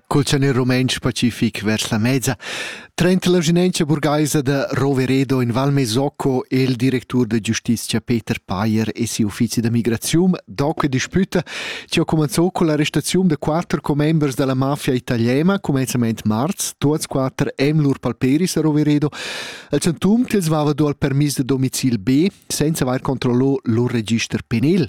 Cul tschanel rumentsch pacific vers la mezza trenta l'ausinentscha burgaisa da Roveredo in Val Mesocco e il directur da giustitia Peter Payer e siu uffizi da migraziun do que disputa chi ha cumanzò con l'arrestaziun da quatter commembers dalla mafia italiana cumenzament marz, tuots quatter en lur palperis a Roveredo, al chantum ch'els vava do al permis da domicil B senza avair controllò lur register penal.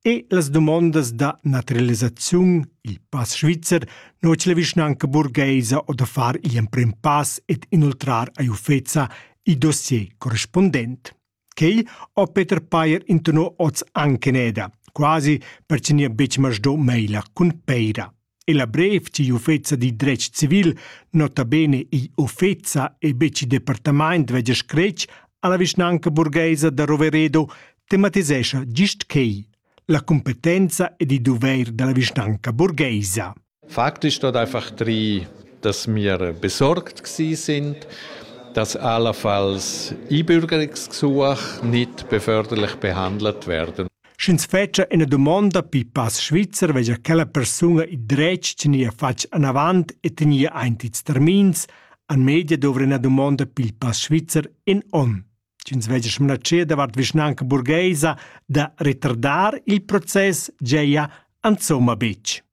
E las dumondas da naturalisaziun, il pass svizzer, notg la vischnanca burgheisa o da far gl'emprim pass ed inoltrar a Ufeza il dossier correspondent. Quei ho Peter Payer intonò oz anche neda, quasi per che nia betg masdo meila cun peira. e la brev tgi uffeza dil dretg civil nota bene igl uffeza e betg il departamaint vegia scretg alla vischnanca burgheisa da Roveredo tematisescha gist quei la competenza ed il doveir dalla vischnanca burgheisa. Faktisch dort einfach drei, dass wir besorgt sind, dass allenfalls einbürgerungsgesuche nicht beförderlich behandelt werden. Sch'ins fetscha üna dumonda pipas svizzer vegia quella persuna il dretg tegnir fatg anavant e tegnir aint ils termins, an media dovra üna dumonda pipas svizzer in on. Sch'ins vegia smanatschia davart vischnanca burgheisa da retardar il process, giaja insomma betg.